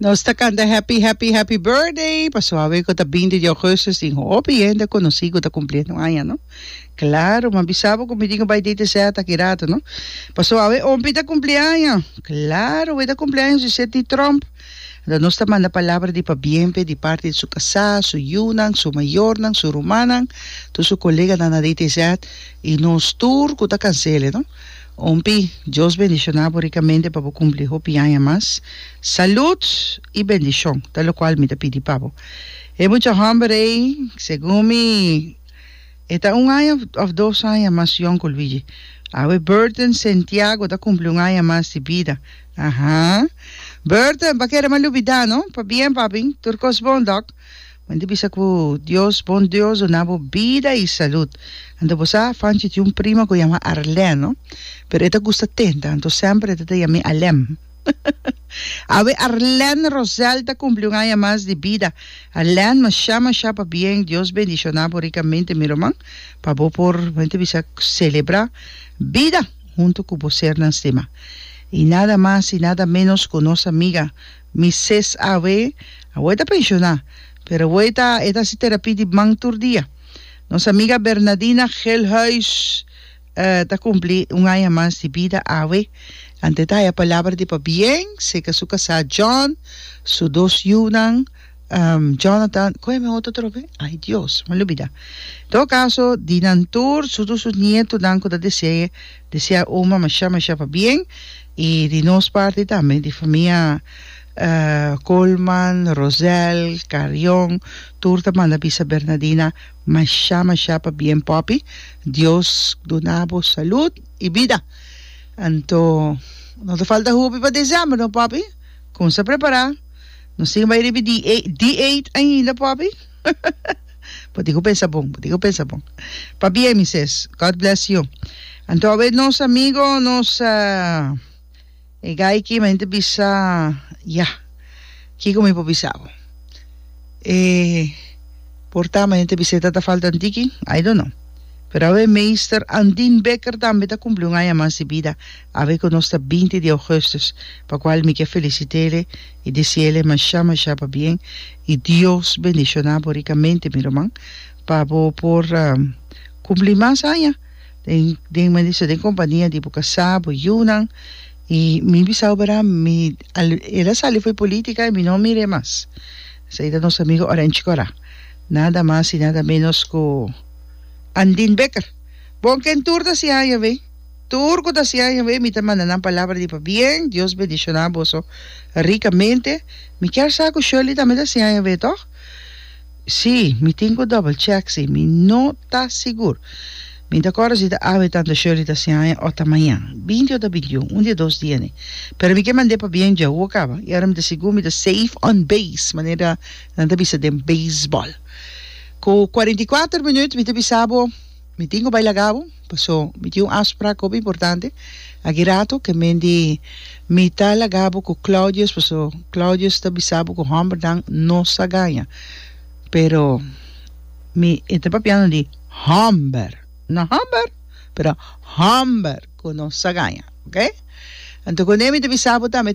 Nos ta canta happy, happy, happy birthday pa suave cu ta 20 de augustus tin hopi hende conocí cu ta cumpliendo aña no claro ma bisabo cu mi tin cu bay date set aki rato no pa suave ompi ta cumpli aña claro wey ta cumpli aña su set ni trump Anto nos ta manda palabra di pabien p'e di parti di su kasá, su yunan, su mayornan, su rumannan, tur su koleganan na DTZ i nos tur ku ta kansele, no. Umpi, Dios bendishoná bo rikamente pa bo kumpli hopi aña mas. Salùd i bendishon ta lokual mi ta pidi pa bo. E mucha hòmber ei, segun mi, e ta un aña òf dos aña mas yòn ku Luigi. Awe Burton Santiago ta kumpli un aña mas di bida. Aha. Burton, pa keda malubi da no. Pabien papi, tur kos bon dòk. Wen di bisa ku Dios bon Dios duna bo bida i salud. Anto bo sa, Fanchi tin un prima ku yama Arlè no. Pero e ta gusta tenta, anto semper e ta ta yam'é Alèm. Awe Arlèn Rosel ta kumpli un aña mas di bida. Arlèn, mashá mashá pabien, Dios bendishoná bo rikamente mi ruman, pa bo por, wen ta bisa, selebrá bida. huntu cu bo sernan stima. I nada mas i nada menos cu nos amiga Mises awe, awe ta pensioná, pero awe ta e ta haci terapia di man tur dia. Nos amiga Bernadina Gelhuis ta cumpli un aña mas di bida awe. Ante ta haya palabra di pabien, seca su casá John, su dos yiunan, Um, Jonathan, cohe mi auto trobe? Ay Dios, me lo bida. Todo caso, di nan tur, su tur su nietonan cu ta desee, desea oma masha masha pa bien, y di nos parti tambe, di famia uh Colman, Rosel, Carion, tur ta manda bisa Bernadina masha masha pa bien popi, Dios duna bo salud y bida. Anto, no ta falta hopi pa December no popi, comsa prepara. No siga bai riba di e dieet ainda papi bo tin cu pensa bon bo tin cu pensa bon pa bien mi ses God bless you anto awe nos amigo nos e guy ki men ta bisa ya kico mi por bisa bo e porta men ta bisa e tata falta un tiki I don't know pero awe meester Andin Becker tambe ta cumpli un aña mas di bida Awe ku nos ta binti di Augustus pa kual mi ke felisitele i disiele masha masha pabien i Dios bendishoná bo rikamente mi ruman pa bo por kumpli mas aña den den mester den kompania di bo kasá bo yunan i mi bisa bo bardad mi al el a sali for politica i mi no a mir'e mas esei ta nos amigo Orange Cora nada mas i nada menos ku Andin Becker bon ken tur ta hasi aña awey. Tur cu ta siña Yahweh, mi ta manda nan palabra di pabien. Dios bendiciona boso ricamente. Mi kier sa cu Shirley tambe ta siña Yahweh, toch? Sí, mi tin cu double check si. Mi no ta sigur. Mi ta cora si ta awe tanto Shirley ta siña aña o ta mañan. Binti o ta bintiun. Un di e dos dia ne. Pero mi ke mand'é pabien dja hu a caba. Y ahora mi ta sigur mi ta safe on base, manera nan ta bisa den baseball. Cu cuarenta y cuater minuut mi ta bisa bo. Mi tin cu bay laga bo, paso mi tin un afspraak hopi importante aki rato, ke men di mi ta laga bo cu Claudius, paso Claudius ta bisa bo cu hombernan no sa gaña, pero mi e ta papiando di homber, no homber, pero homber cu no sa gaña, ok. Anto cu ne mi ta bisa bo tambe.